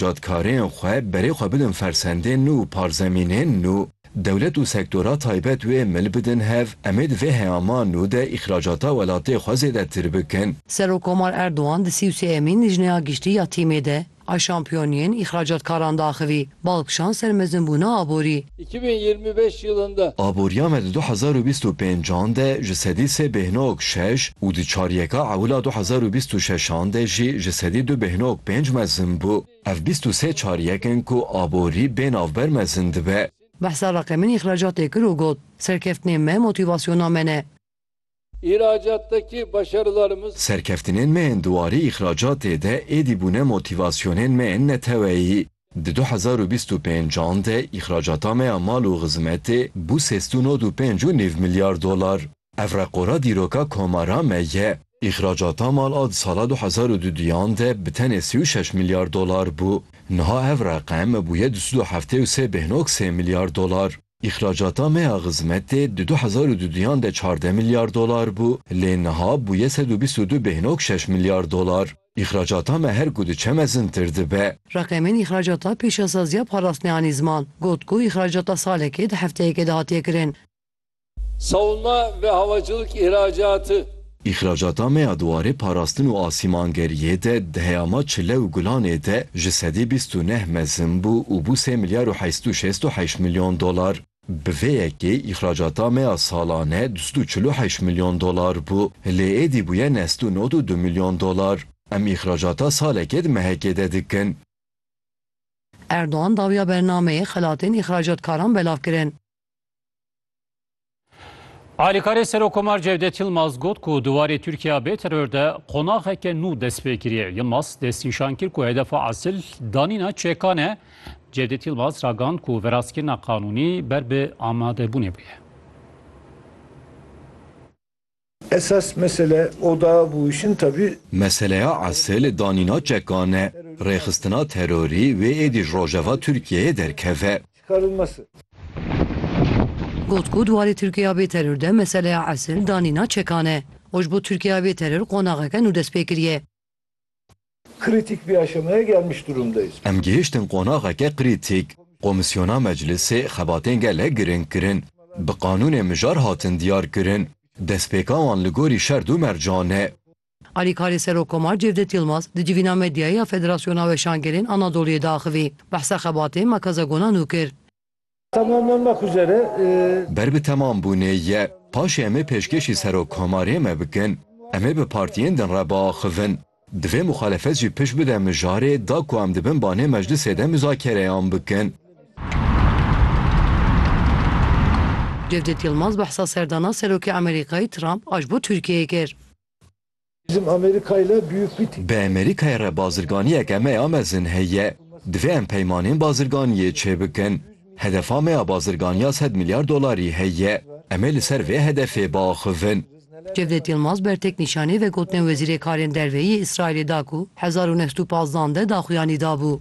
Dadkarên xwe berê xwe bidin fersendên nû û parzemînên nû, dewlet û sektora taybet wê mil bidin hev, em ê di vê heyama nû de îxracata welatê xwe zêdetir bikin. Serokkomar Erdogan di sî û sê emîn Lijneya Giştî ya TM'ê de a şampiyoniyên îxracatkaran diaxivî, bal kişand ser mezinbûna aborî. Îki bin yirmi beş yılında. Aboriya me di du hezar û bîst û pênc an de ji sedî sê bêhnog şeş û di çaryeka ewila du hezar û bîst û şeş an de jî ji sedî du bêhnog pênc mezin bû. Ev bîst û sê çaryek in ku aborî bê navber mezin dibe. Behsa Reqemîn îxracatê kir û got, Serkeftinên me motîvasyona me ne. îhracatteki başarılarımız. Serkeftinên me yên di warê îhracatê de êdî bûne motîvasyonên me yên neteweyî. Di du hezar û bîst û pênc an de îhracata me ya mal û xizmetê bû sêst û nod û pênc û nîv milyar dolar. Ev reqora dîroka komara me ye. Îhracata mal a di sala du hezar û du duyan de bi tenê sî û şeş milyar dolar bû. Niha ev reqem bûye du sed û heftê û sê bêhnog sê milyar dolar. Îxracata me ya xizmetê di du hezar û du duyan de çardeh milyar dolar bû, lê niha bûye sed û bîst û du bêhnog şeş milyar dolar. Îxracata me her ku diçe mezintir dibe. Reqemên îxracata Pêşasaziya Parasneyanî Ziman got ku îxracata salekê di hefteyekê de hatiye kirin. Savunma ve havacılık ihracatı. Îxracata me ya di warê parastin û asîmangeriyê de di heyama çile û gulanê de ji sedî bîst û neh mezin bû û bû sê milyar û heşt û şêst û heşt milyon dolar. Bi vê yekê îxracata me ya salane du sed û çil û heşt milyon dolar bû, lê êdî bûye nest û nod û du milyon dolar. Em îxracata salekê di mehekê de dikin. Erdogan dawiya bernameyê xelatên îxracatkaran belav kirin. Alîkarê Serokkomar Cevdet Yilmaz got ku di warê Tirkiya bê teror de qonaxeke nû dest pê kiriye. Yilmaz destnîşan kir ku hedefa esil danîna çekan e. Cevdet Yilmaz ragand ku verastkirina qanûnî ber bi amadebûnê bûye. Esas mesele oda bû işin tevî. Meseleya esil danîna çekan e. Rêxistina terorî wê êdî ji rojeva Tirkiyeyê derkeve. Got ku di warê Tirkiyeya bê teror de meseleya esil danîna çekan e û ji bo Tirkiyeya bê teror qonaxeke nû destpêkiriye. Kritik bir aşamaya gelmiş durumdayız. Em gihiştin qonaxeke krîtîk. Komîsyona Meclisê xebatên gelek girîng kirin. Bi qanûnê mijar hatin diyar kirin. Destpêka wan li gorî şerd û mercan e. Alîkarê Serokkomar Cevdet Yilmaz di civîna medyayê ya Federasyona Weşangerên Anadoluyê de axivî. Behsa xebatê Makaza Gonanu kir. Ber bi temam bûnê ye. Paşê em ê pêşkêşî Serokkomarê me bikin. Em ê bi partiyên din re biaxivin. Divê muxalefet jî pişt bide mijarê da ku em di bin banê meclisê de muzakereyan bikin. Cevdet Yilmaz behsa serdana Serokê Amerîkayê Trump a ji bo Tirkiyeyê kir. Bizim Amerika ile büyük bir. Bi Amerîkayê re bazirganiyeke me ya mezin heye. Divê em peymanên bazirganiyê çêbikin. Hedefa me ya bazirganiya sed milyar dolarî heye. Em ê li ser vê hedefê biaxivin. Cevdet Yilmaz bertek nîşanî vegotine Wezîrê Karên Derve yê Îsraîlê da ku hezar û neh sed û pazdand e daxuyanî dabû.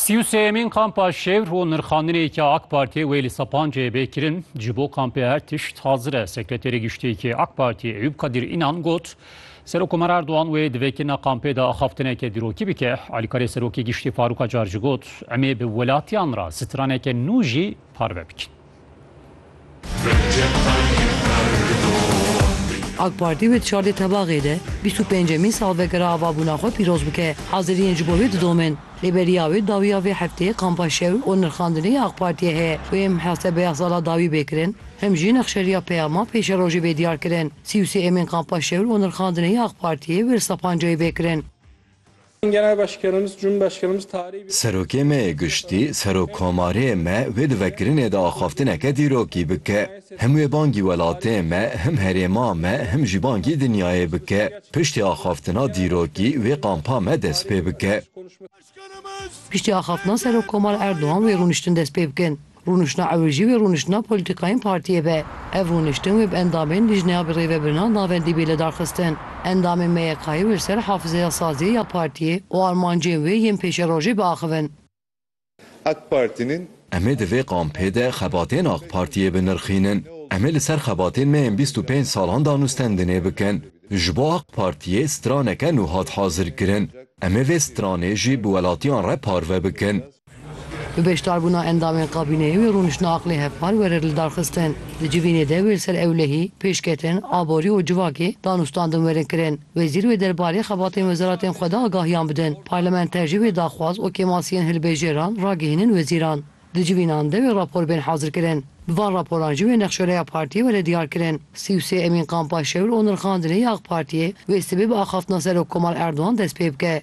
Sî û sêyemîn kampa şêwr û nirxandinê ke AK Partiyê wê li Sepanceyê bê kirin ji bo kampê her tişt hazir e. Sekreterê Giştîyekê AK Partiyê Eyûp Kadîr Înan got, Serokkomer Erdogan wê di vê kirina kampê de axaftineke dîrokî bike. Alîkarê Serokê Giştî Farûk Acar jî got, Em ê bi welatiyan re straneke nû jî parve bikin. AK Partî wê di çardê Tebaxê de bîst û pêncemîn salvegera avabûna xwe pîroz bike. Haziriyên ji bo vê didomin. Lê beriya wê dawiya vê hefteyê kampa şewr û nirxandinê ya AK Partiyê heye ku hêm muhesebeya sala dawî bê kirin, him jî nexşeriya peyama pêşerojê bê diyar kirin. Sî û sê emên kampa şewr û nirxandinê ya AK Partiyê wê li Sapancayê bê kirin. Serokê me yê giştî, Serokkomarê me wê di vekirinê de axaftineke dîrokî bike. Him wê bangî welatê me, him herêma me, him jî bangî dinyayê bike. Piştî axaftina dîrokî wê kampa me dest pê bike. Piştî axaftina Serokkomar Erdogan wê rûniştin dest pê bikin. Rûniştina ew jî wê rûniştina polîtîkayên partiyê be. Ev rûniştin wê bi endamên Lijneya Birêvebirina Navendî bê lidarxistin. Endamên MYKyê wê li ser hafizeya saziyê ya partiyê û armancên wê yên pêşerojê biaxivin. AK Partînên. Em ê di vê kampê de xebatên AK Partiyê binirxînin. Em ê li ser xebatên me yên bîst û pênc salan danûstendinê bikin. Ji bo AK Partiyê straneke nû hat hazirkirin. Em ê vê stranê jî bi welatiyan re parve bikin. Bi beşdarbûna endamên kabîneyê wê rûniştina aqilê hevpar were lidarxistin. Di civînê de wê li ser ewlehî, pêşketin, aborî û civakê danûstandin werin kirin. Wezîr wê derbarê xebatên wezeratên xwe de agahiyan bidin. Parlamenter jî wê daxwaz û kêmasiyên hilbêjêran ragihînin wezîran. Di civînan de wê rapor bên hazirkirin. Bi van raporan jî wê nexşoreya partiyê were diyarkirin. Sî û sê emîn kampa şewir û nirxandinê ya AK Partiyê wê sibê bi axaftina Serokkomar Erdogan dest pê bike.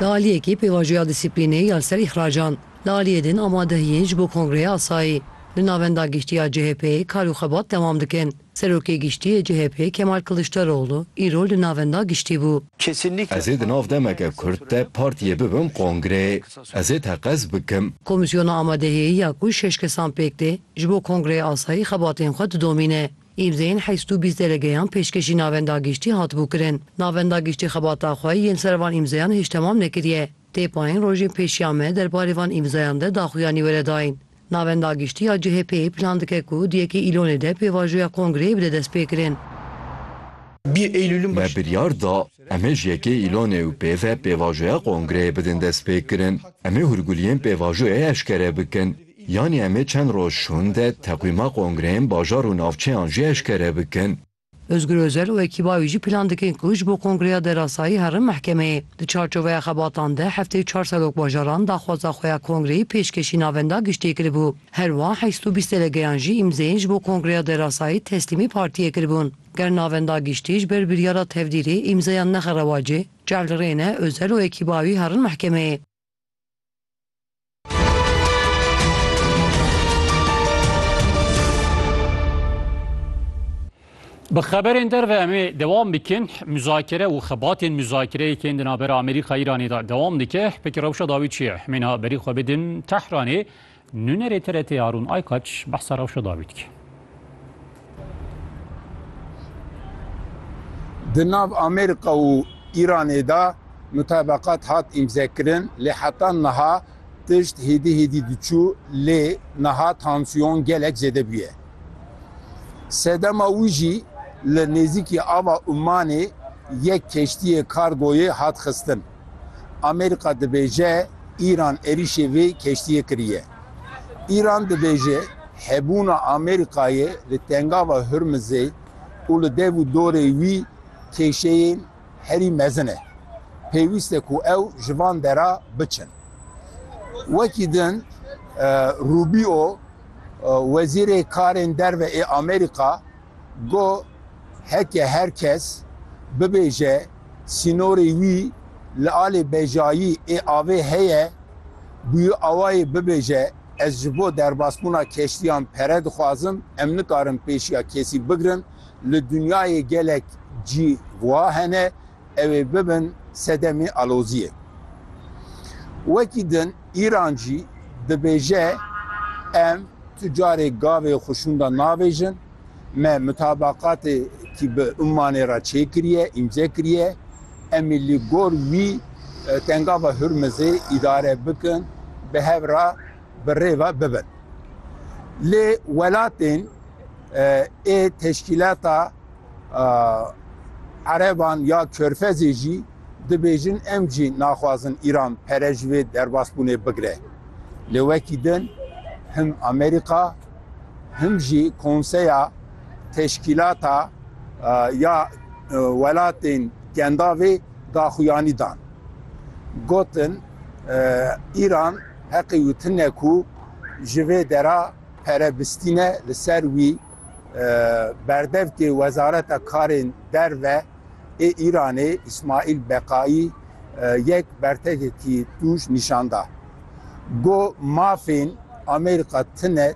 Li aliyekî pêvajoya dîsîplînê ya li ser îxracan, li aliyê din amadehiyên ji bo kongreya asayî li navenda giştî ya CHP'ê kar û xebat dewam dikin. Serokê giştî yê CHP'ê Kemal Kiliçdaroglu îro li navenda giştî bû. Ez ê di nav demeke kurt de partiyê bibim kongreyê. Ez ê teqez bikim. Komîsyona amadehiyî ya ku şeş kesan pêk tê, ji bo kongreya asayî xebatên xwe didomîne. Îmzeyên heşt û bîst delegeyan pêşkêşî navenda giştî hatibû kirin. Navenda giştî xebata xwe yên ser van îmzeyan hêj temam nekiriye. Tê payîn rojên pêşiya me derbarê van îmzeyan de daxuyanî were dayîn. Navenda giştî ya CHP'ê plan dike ku di yekê Îlonê de pêvajoya kongreyê bide destpêkirin. Me biryar da em ê ji yekê Îlonê û pê ve pêvajoya kongreyê bidin destpêkirin. Em ê hûrguliyên pêvajoyê eşkere bikin. Yanî em ê çend roj hûn de teqwîma kongreyên bajar û navçeyan jî eşkere bikin. Ozgur Özel û ekîba wî jî plan dikin ku ji bo kongreya derasayî herin mehkemeyê. Di çarçoveya xebatan de heftê çar serokbajaran daxwaza xwe ya kongreyê pêşkêşî navenda giştiyê kiribû. Her wiha heşt û bîst delegeyan jî îmzeyên ji bo kongreya derasayî teslîmê partiyê kiribûn. Ger navenda giştî ji ber biryara tevdîrê îmzeyan nexe rewacê, cehd li rê ne, Özel û ekîba wî herin mehkemeyê. Bi xeberên derve em ê dewam bikin muzakere û xebatên muzakereyê kên di navbera Amerîka Îranê de dewam dike. Peki rewşa dawî çi ye? Hemîna berî xwe bidin Tehranê Nûnerê TRT'ê Harûn Aykaç behsa rewşa dawî dike. Di nav Amerîka û Îranê de mutebeqat hat îmzekirin lê heta niha tişt hêdî hêdî diçû lê niha tansiyon gelek zêde bûye. Sedema wî jî li nêzîkî ava Ummanê yek keştiyê kargoyê hat xistin. Amerîka dibêje Îran êrîşê vê keştiyê kiriye. Îran dibêje hebûna Amerîkayê li Tengava Hurmizê û li dev û dorê wî kêşeyên herî mezin e. Pêwîst e ku ew ji van dera biçin. Wekî din Rubîo, wezîrê karên derve ê Amerîka, Got, Heke her kes bibêje sînorê wî li alê bejayî ê avê heye, bûyî awayê bibêje ez ji bo derbasbûna keştiyan pere dixwazim, em nikarin pêşiya kesî bigirin, li dinyayê gelek cî wiha hene, ew ê bibin sedemê aloziyê. Wekî din Îran jî dibêje em tu carê gavê xwe şûnda nabêjin, me mutabeqatekî bi Ummanê re çêkiriye, îmze kiriye, em ê li gor wî Tengava Hurmizê îdare bikin, bi hev re bi rê ve bibin. Lê welatên ê teşkîlata. Ereban ya Körfezê jî dibêjin em jî naxwazin Îran pere ji vê derbasbûnê bigire. Lê wekî din him Amerîka him jî Konseya Teşkîlata ya Welatên Kendavê daxuyanî dan. Gotin Îran heqê wî tune ku ji vê dera pere bistîne li ser wî. Berdevkê Wezareta Karên Derve ê Îranê Îsmaîl Beqaî yek bertekekî tûj nîşan da. Got mafên Amerîka tine